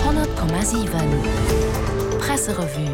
100,7 Presserevue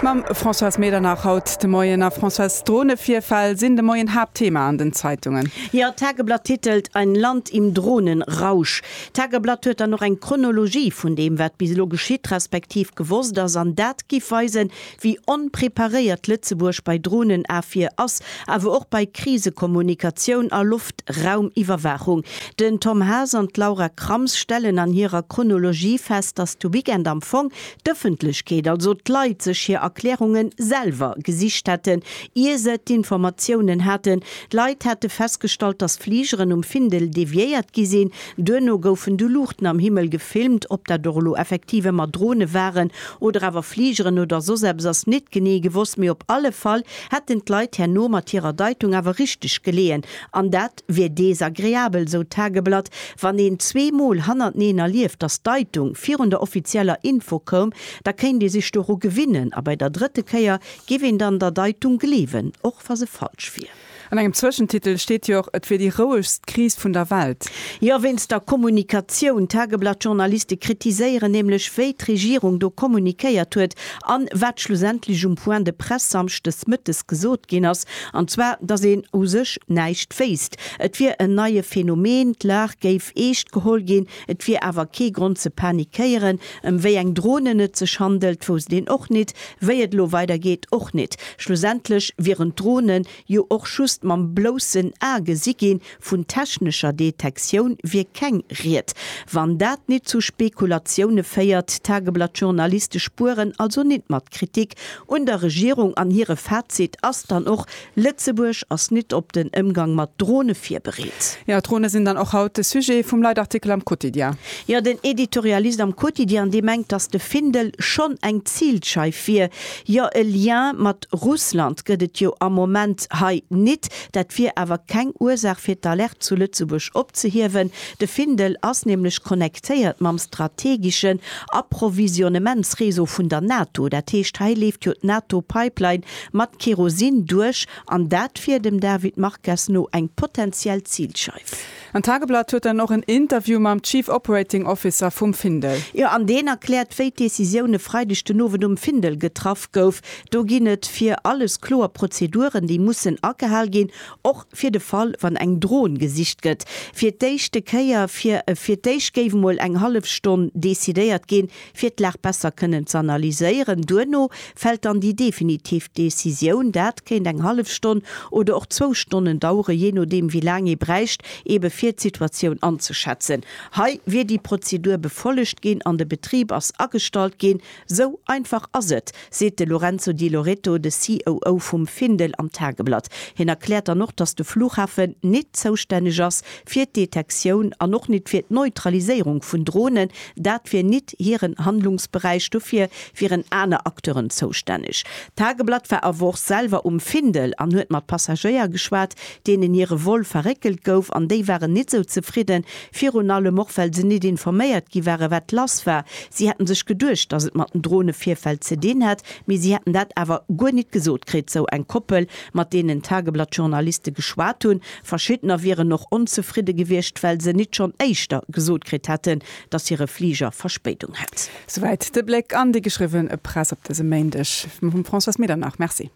mam Françoise Medernach, haut de Moien a Françoise Dronevirfäll sinn de Moien Haaptthema an den Zeitungen. Jo, d'Tageblatt titelt Ein Land im Drohnenrausch. D'Tageblatt huet dann och eng Chronologie vun deem wat bis elo geschitt respektiv gewosst ass an dat giff weisen wéi onpreparéiert Lëtzebuerg bei Drohnenafwier ass, awer och bei Krisekommunikatioun a Loftraumiwwerwaachung. Den Tom Haas an d'Laura Krams stellen an hirer Chronologie fest, datt de Weekend am Fong d'Ëffentlechkeet, also d'Leit, sech hir Erklärunge selwer gesicht hätten, ier se d'Informatiounen haten. Leit hätte festgestallt, datt Fligeren um Findel deviéiert gi sinn, Duerno goufen du Luuchten am Himmel gefilmt. Ob dat och elo effektiv ëmmer Drone waren oder awer Fligeren oder soss eppes ass nit genee gewosst, mee op alle Fall hätten d'Leit herno mat hirer Deitung awer richteg geleeën. An dat wier desagreabel, sou d'Tageblatt. Wann een zwee Mol hannerteneen erlieft, datt d'Deitung virun der offizieller Info koum, da kéint ee sech doru gewinnen a bei der drëtte Kéier géif een dann der Deitung gleewen, och wa se falsch wier. An engem Zwëschentitel steet jo och, et wier déi rouegst Kris vun der Welt. Jo, wéinst der Kommunikatioun. D'Tageblatt-Journaliste kritiséieren nämlech, wéi d'Regierung do kommunikéiert huet an wat schlussendlech um Point de presse samschdes mëttes gesot ginn ass, an zwar, dass een u sech näischt wéisst. Et wier en neie Phänomen, d'Lag géif eescht geholl ginn. Et wier awer kee Grond ze panikéieren, ëm wéi eng Dronen et sech handelt, wousst een och nit, wéi et elo weidergeet och nit. Schlussendlech wieren d'Dronen jo och just mam bloussen A gesi ginn, vun technescher Detektioun wier keng Ried. Wann dat nit zu Spekulatioune féiert, d'Tageblatt-Journaliste spueren also nit mat Kritik un der Regierung an hire Fazit ass dann och, Lëtzebuerg ass nit op den Ëmgang mat Drone virbereet. Jo, d'Drone sinn dann och haut de Sujet vum Leitartikel am Quotidien. Jo, den Editorialist am Quotidien, dee mengt, datt de Findel schonn eng Zilscheif wier. Jo, e Lien mat Russland gëtt et jo am Moment hei nit. Dat wier awer keng Ursaach fir d'Alerte zu Lëtzebuerg opzehiewen. De Findel ass nämlech connectéiert mam strategeschen Approvisionnementsreseau vun der NATO. Dat heescht, hei leeft jo d'NATO-Pipeline Mat Kerosin duerch, an dat wier dem David Marques no eng potentiell Zilscheif. An d'Tageblatt huet dann och en Interview mam Chief Operating Officer vum Findel. Jo, an deen erkläert, wéi d'Decisioun e Freideg den Owend um Findel getraff gouf. Do ginn et fir alles kloer Prozeduren, déi mussen agehal ginn, och fir de Fall, wann eng Dron gesicht gëtt. Fir d'éischte Kéier, fir fir d'éischt géif emol eng hallef Stonn decidéiert ginn, fir d'Lag besser kënnen z'analyséieren. Duerno fält dann déi definitiv Decisioun. Dat kéint eng hallef Stonn oder och zwou Stonnen daueren, jee nodeem wéi laang ee bräicht, eebe fir d'Situatioun anzeschätzen. Hei wier déi Prozedur befollegt ginn an de Betrib ass agestallt ginn. Sou einfach ass et. seet de Lorenzo Di Loreto, de COO vum Findel am Tageblatt. Hien erkläert dann och, datt de Flughafen nit zoustänneg ass fir d'Detektioun an och nit fir d'Neutraliséierung vun Dronen. Dat wier nit hiren Handlungsberäich, dofir wieren aner Acteuren zoustänneg. D'Tageblatt war awer och selwer um Findel an huet mat Passagéier geschwat, deenen hire Vol verréckelt gouf an déi waren nit esou zefridden, Virun allem och, well se nit informéiert gi ware wat lass war. Si hätten sech geduecht, dass et mat den Drohn e Virfäll ze dinn hätt, mee si hätten dat awer guer nit gesot kritt, sou eng Koppel, mat deenen d'Tageblatt-Journaliste geschwat hunn. Verschiddener wieren och onzefridde gewiescht, well se nit schonn éischter gesot kritt hätten, dass hire Fliger Verspéidung hätt. Souwäit de Bléck an déi geschriwwen Press op dësem Méindeg vum Françoise Medernach. Merci.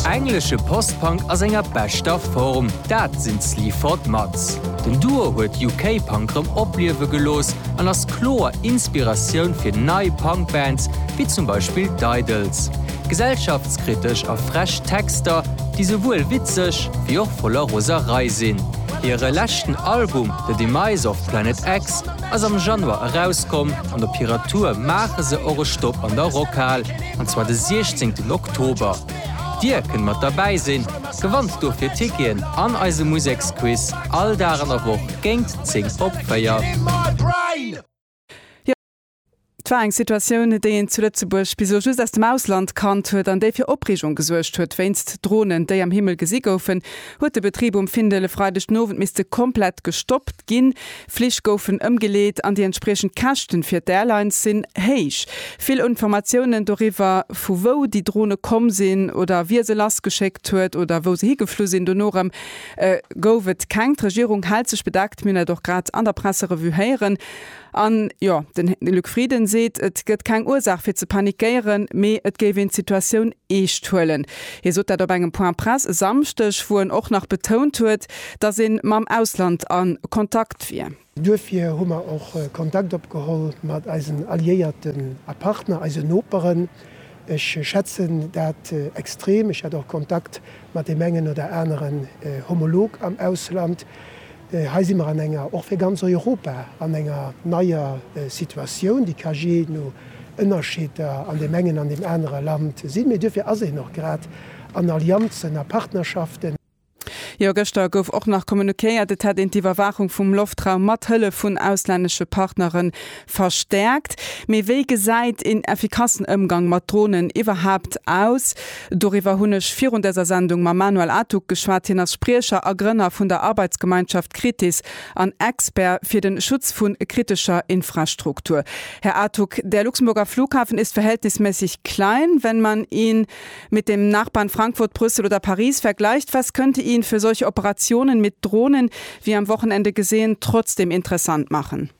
Englesche Post-Punk a senger beschter Form, dat sinn d'Sleaford Mods. Den Duo huet UK-Punk rëm opliewe gelooss an ass kloer Inspiratioun fir nei Punk-Bands, wéi zum Beispill d'Idles. Gesellschaftskritesch a frech Texter, déi souwuel witzeg wéi och voller Roserei sinn. Hire leschten Album The Demise of Planet X ass am Januar erauskomm an op hirer Tour maache se och e Stopp an der Rockhal, an zwar de 16 Oktober. Dir kënnt mat derbäi sinn, gewannt dofir Ticketen an eise Museksquiz all Dag an der Woch géingt 10 op 4. Et war eng Situatioun, déi een zu Lëtzebuerg bis elo just aus dem Ausland kannt huet an déi fir Opreegung gesuergt huet. Wéinst Dronen, déi am Himmel gesi goufen, huet de Betrib um Findel e Freideg den Owend misste komplett gestoppt ginn. Flich goufen ëmgeleet an déi entspriechend Käschten fir d'Airlines sinn héich. Vill Informatiounen doriwwer, vu wou déi Drone komm sinn oder wie se lassgeschéckt huet oder wou se higeflu sinn, dono erëm gouf et keng. D'Regierung hält sech bedeckt. Mir hunn dat och grad an der Presserevue héieren. An, jo, den Luc Frieden seet, et gëtt keng Ursaach fir ze panikéieren, mee et géif een d'Situatioun eescht huelen. Hie sot dat op engem Point Presse e Samschdeg, wou en och nach betount huet, datt ee mam Ausland a Kontakt wier. Duerfir hu mer och Kontakt opgeholl mat eisen Alliéierten a Partner, eisen Noperen. Ech schätzen dat extrem. Ech hat och Kontakt mat deem engen oder aneren Homolog am Ausland. Hei si mer an enger, och fir ganz Europa, an enger neier Situatioun, déi ka jee no Ënnerscheeder an deem engen an deem anere Land sinn, mee duerfir ass een och grad an Allianzen a Partnerschaften. Jo, gëschter gouf och nach communiquéiert, et hätt een d'Iwwerwaachung vum Loftraum mat Hëllef vun auslännesche Partnere Verstärkt, mee wéi gesäit een effikassen Ëmgang mat Dronen iwwerhaapt aus? Doriwwer hunn ech virun dëser Sendung mam Manuel Atug geschwat. Hien ass Spriecher a Grënner vun der Arbeitsgemeinschaft Kritis an Expert fir den Schutz vun kritescher Infrastruktur. Här Atug, der Luxemburger Flughafen ist verhältnismässig klein, wenn man ihn mit dem Nachbarn Frankfurt, Brüssel oder Paris vergleicht. Was könnte ihn für solche Operationen mit Drohnen wie am Wochenende gesehen trotzdem interessant machen?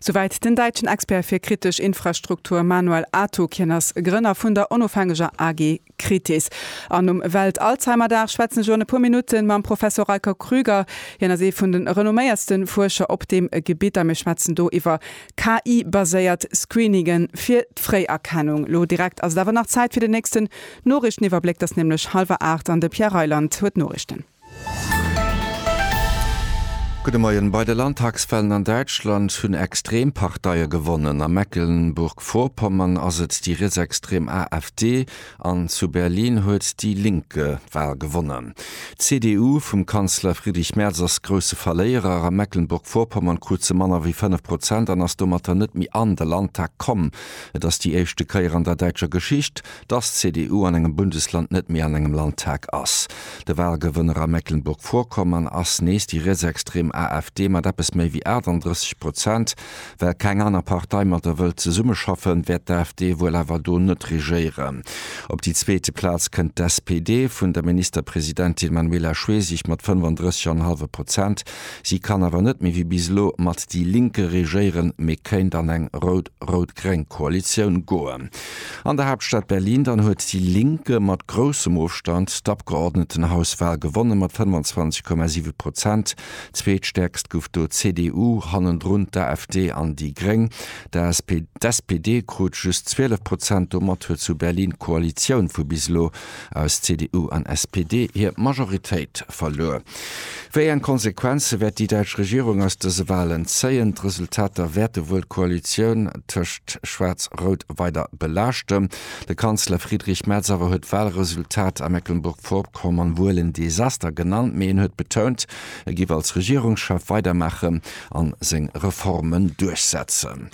Souwäit den däitschen Expert fir kritesch Infrastruktur Manuel Atok. Hien ass Grënner vun der onofhängeger AG Kritis. An um Welt-Alzheimer-Dag schwätzen ech elo an e puer Minutte mam Professor Raiko Krüger. Hien ass ee vun de renomméiertste Fuerscher op deem Gebitt a mir schwätzen do iwwer KI-baséiert Screeninge fir d'Fréierkennung. Elo direkt ass et awer nach Zäit fir den nächsten Noriichteniwwerbléck. Et ass nämlech hallwer aacht an de Pierre Reyland huet d'Noriichten. Gudde Moien. Bei de Landtagswahlen an Däitschland hunn Extremparteie gewonnen. A Mecklenburg-Vorpommern ass et déi rietsextrem AfD an zu Berlin huet déi Linke d'Wahl gewonnen. D'CDU vum Kanzler Friedrich Merz ass grousse Verléierer. A Mecklenburg-Vorpommern krut se manner wéi 5 Prozent an ass domatter net méi an de Landtag komm. Et ass déi éischte Kéier an der däitscher Geschicht, dass d'CDU an engem Bundesland net méi an engem Landtag ass. De Wahlgewënner a Mecklenburg-Vorpommern ass nees déi rietsextrem AfD mat eppes méi wéi 38 Prozent. Well keng aner Partei mat der wëllt zesummeschaffen, wäert d'AfD wuel awer do net regéieren. Op déi zweete Plaz kënnt d'SPD vun der Ministerpresidentin Manuela Schwesig mat 35,5 Prozent. Si kann awer net méi wéi bis elo mat déi Linke regéieren, mee kéint an eng rout-rout-gréng Koalitioun goen. An der Haaptstad Berlin dann huet déi Link mat groussem Ofstand d'Abgeordnetenhauswal gewonnen, mat 25,7 Prozent. Zweetstäerkst gouf do d'CDU, hannendrun d'AfD an déi Gréng. D'SPD krut just 12 Prozent. Domat huet zu Berlin d'Koalitioun vu bis elo aus CDU an SPD hir Majoritéit verluer. Wéi eng Konsequenze wäert déi däitsch Regierung aus dëse Walen zéien? D'Resultater wäerte wuel d'Koalitioun tëscht Schwaarz-Rout weider belaaschten. De Kanzler Friedrich Merz awer huet d'Walresultat a Mecklenburg-Vorpommern wuel en Desaster genannt, mee en huet betount, e giff als Regierungschef weidermaachen a seng Reformen duerchsetzen.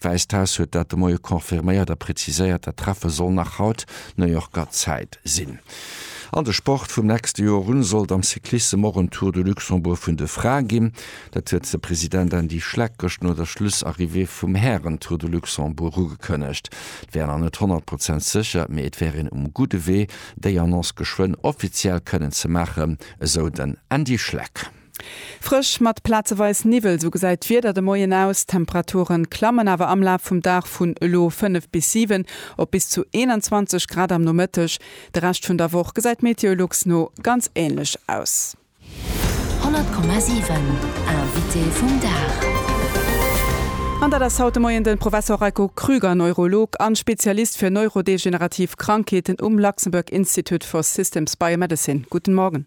D'Wäisst Haus huet dat de Moie confirméiert a preziséiert, dat Treffe soll nach haut New Yorker Zäit sinn. An de Sport, Vum nächste Joer un sollt am Cyclissem och en Tour de Luxembourg vun de Frae ginn. Dat huet de President Andy Schleck gëscht no der Schlussarrivée vum Hären-Tour de Luxembourg ugekënnegt. Et wär nach net 100 Prozent sécher, mee et wär een um gudde Wee, déi Annonce geschwënn offiziell kënnen ze maachen, esou den Andy Schleck. Frësch mat plazeweis Niwwel, sou gesäit d'Wieder de Moien aus. D'Temperature klammen awer am Laf vum Dag vun elo 5 bis 7 op bis zu 21 Grad am Nomëtteg. De Rescht vun der Woch gesäit Meteolux no ganz änlech aus. 100,7 Invité vum Dag. An dat ass haut de Moien de Professor Reiko Krüger, Neurolog a Spezialist fir neurodegenerativ Krankheeten um Luxembourg Institute for Systems Biomedicine. Guten Morgen.